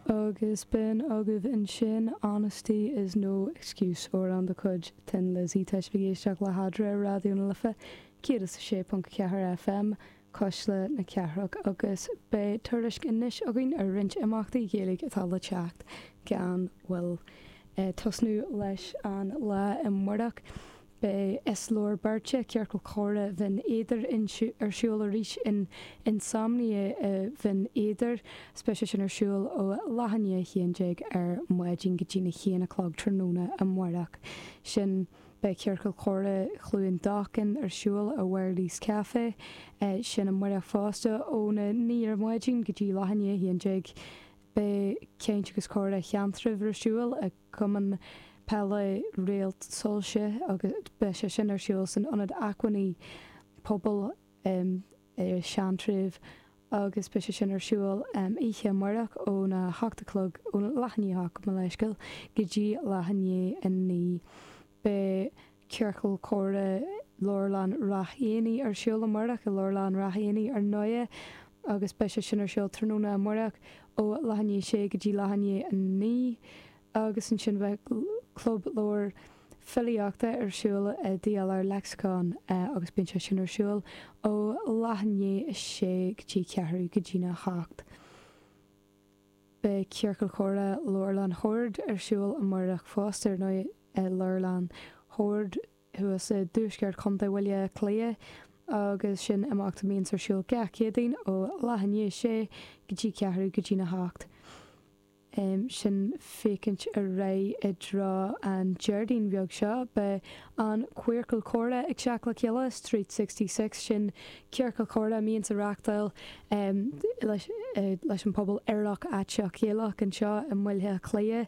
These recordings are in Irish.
Agus b'in agaibh ansin Honesty is no Excuse, amhrán de chuid Thin Lizzy. Tá sibh ag éisteacht le hEadra ar Raidió na Life 106.4 FM, Cuisle na Cathrach, agus beidh tuairisc anois againn ar roinnt imeachtaí Gaeilge atá le teacht gan mhoill. Ag tosnú leis an lá amáireach, Beidh Is Leor Beirt, Ciorcal Comhrá Bhinn Éadair, ar siúl arís in Insomnia Bhinn Éadair. Is beidh sé sin ar siúl ó leath i ndiaidh a 11 ar maidin go dtí na haon a chlog tráthnóna amáireach. Ansin, beidh Ciorcal Comhrá Chluain Dolcáin ar siúl i Wherley's Café sin amáireach fosta ó na naoi ar maidin go dtí leath i ndiaidh a 11. Beidh Caint agus Comhrá Sheantraibh ar siúl ag. Cumann Peile Réalt Soilse agus beidh sé sin ar siúl san Ionad Acmhainní Pobail i Seantraibh agus beidh sé sin ar siúl oíche amáireach óna hocht a chlog, ó leath i ndiaidh a hocht, mo leithscéal, go dtí leath i ndiaidh a naoi. Beidh. Ciorcal Comhrá Leabharlann Rath Éanaigh ar siúl amárach i Leabharlann Rath Éanaigh ar ndóigh agus beidh sé sin ar siúl tráthnóna amárach ó leath i ndiaidh a sé go dtí leath i ndiaidh a naoi agus ansin beidh Club Leabhar Filíochta ar siúl i DLR Lexicon agus bíonn sé sin ar siúl ó leath i ndiaidh a sé go dtí ceathrú go dtí na hocht. Beidh Ciorcal Comhrá Leabharlann Shoird ar siúl amárach fosta ar ndóigh. i Leabharlann Shoird thuas i dtuaisceart Chontae Bhaile Átha Cliath agus sin imeacht a mbíonns ar siúl gach Céadaoin ó leath i ndiaidh a sé go dtí ceathrú go dtí na hocht. Ansin féachaint ar aghaidh i dtreo an Déardaoin bheag seo. Beidh an Queercal Comhrá ag teacht le chéile, Street Sixty Six, sin ciorcal comhrá a mbíonns á reáchtáil leis an pobal Aerach Aiteach Gaelach anseo i mBaile Átha Cliath.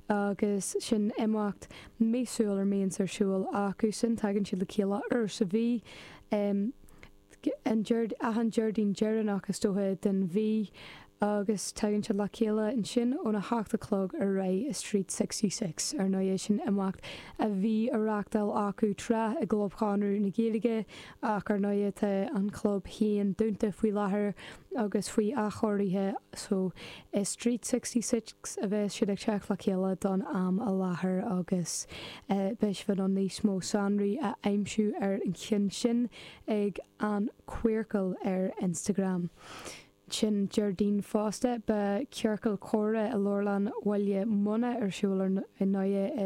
Agus sin imeacht míosúil a mbíonns ar siúl acu sin, tagann siad le chéile uair sa mhí, ar achan Déardaoin deireanach is dócha den mhí, agus tagann siad le chéile ansin óna hocht a chlog ar aghaidh i Street Sixty Six. Ar ndóigh, sin imeacht a bhí á reachtáil acu tráth i gClub Chonradh na Gaeilge Ach ar ndóighe tá an club féin dúnta faoi láthair agus faoi athchóiriú so i Street 66 a bheas siad ag teacht le chéile don am i láthair agus beidh sibh in ann níos mó sonraí a aimsiú ar an cheann sin ag An Queercal ar Instagram. Ansin Déardaoin fosta, beidh Ciorcal Comhrá i Leabharlann Bhaile Munna ar siúl ar ndóighe i